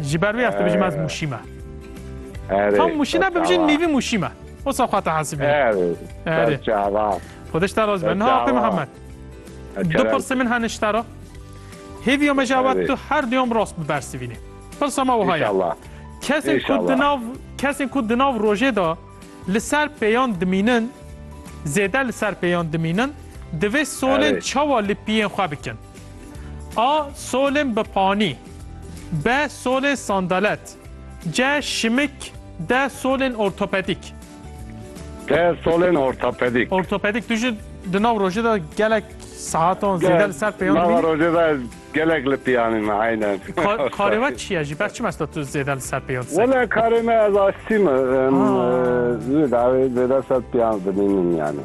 Ji ber wê ez dibijim ez mûşî me. Tam mûşî ne bibijin nîvî mûşî me. O sa xwe te hesibî. Erê. Xwediş te raz be. Niha Apê Mihemed. Du pirsê min hene ji te re. Hêviya me ji ewet tu her duyam rast bibersivînê. Pirsa me wiha ye. Kesên ku di nav kesên ku di nav rojê de li ser pêyan dimînin zêde li ser pêyan dimînin divê solên çawa li piyên xwe bikin. A solên bi panî. B solên sandalet. C şimik. D solên ortopedîk. D solên ortopedîk. Ortopedîk tu jî di nav rojê de gelek sehatan zêde li ser pêyan dimînî? Di nava rojê de ez gelek li pêyanê me eynen. Karê we çi ye jî? Ber çi mesta tu zêde li ser pêyan disekî? Wele karê me ez aştî me. Em zêde li ser pêyan dimînin yanî.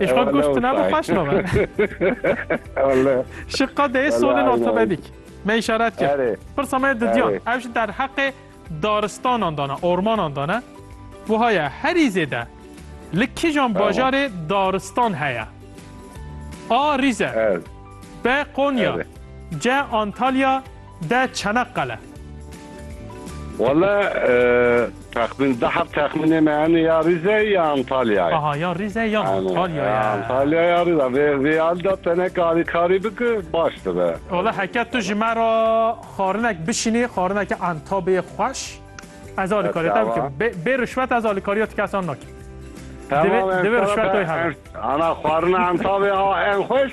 Eş xo goş tu nabo paş no ben. Valla. Şi qadeye sonin ortopedik. Me işaret kir. Pirsa me didiyan. Ev ji der heqê daristanan dana, ormanan dana. Bu haya herî zêde li kijan bajarê daristan heye. A Rîze. B Konya. C Antalya. De Çanakkale. Wele texmin de heft texminê me hene ya Rize ya Antalyayê. Aha ya Rize ya Antalyayê. Antalya ya Rize. Vê vê hal de tene karî karî bike baş dibe. Wele heke tu ji me re xarinek bişînî xarineke entabê xweş ez alîkarî te bikim. Bê bê rişwet ez alîkariya ti kesan nakim. Divê divê rişwet toy hebe. Ana xarina entabê a en xweş.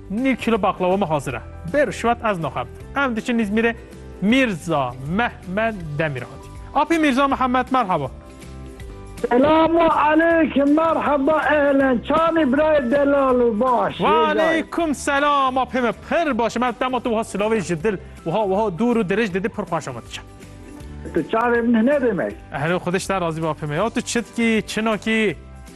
Nîv kîlo baqlawa min hazir e. Bê rişwet ez naxem. Em diçin Îzmîrê Mîrza Mehmed Demîr hatî. Apî Mîrza Mihemed merheba. Selamu aleykum merheba ehlen çanî birayê delal û baş. Wa aleykum selam apê min pir baş im ez dema tu wiha silavê ji dil wiha wiha dûr û dirêj didî pir xweş ama tu çi. Tu çavê min hine demek. Hello xwedê ji te razî be apê min ya tu çi dikî çi nakî.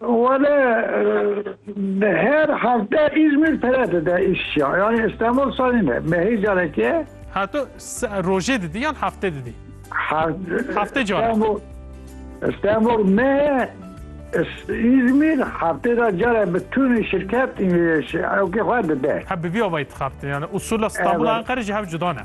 Wele bi her hevde Îzmîr pere dide îşya. Yanî Îstenbul sanî ne. Mehî careke. Ha tu rojê didî yan hefte didî? Hefte careke. Îstenbul mehe Îzmîr heftê de care bi tunî şirket ewkê xwe dide. He bi vî avayî dixebite. Yani usula Îstenbul û Enqere jî hev cuda ne.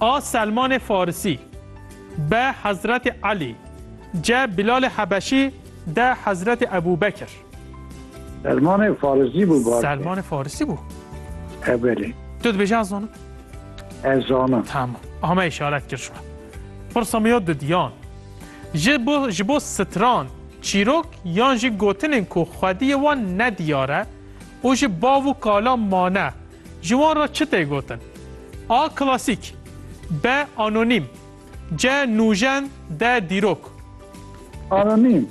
A Selmanê Farisî, B Hezretê Elî, C Bîlalê Hebeşî, D Hezretê Ebû Bekir. Selmanê Farisî bû baş. Selmanê Farisî bû. E belê. Tu dibêjî ez zanim? Ez zanim. Tamam. Ame îşaret kir ji me. Pirsa min ya didiyan. Ji bo ji bo stran çîrok yan jî gotinên ku xwediyê wan nediyar e, û ji bav û kala mane, ji wan re çi tê gotin? A klasîk, B anonîm, C nûjen, D dîrok. Anonîm.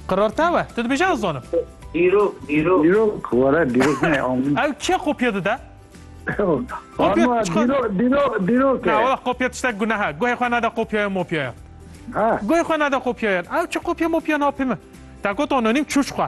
Qirar te we, tu dibêje ez dizanim. Dîrok, dîrok. Dîrok, were dîrok ne anonîm. Ew kê kopya dide? Kopya dîrok, dîrok, dîrok e. Na, were kopya tiştek guneha. Guhê xwe nede kopyaya mopyaya. Guhê xwe nede kopyayan. Ew çi kopya mopya napê min. Te got anonîm çûç xwe.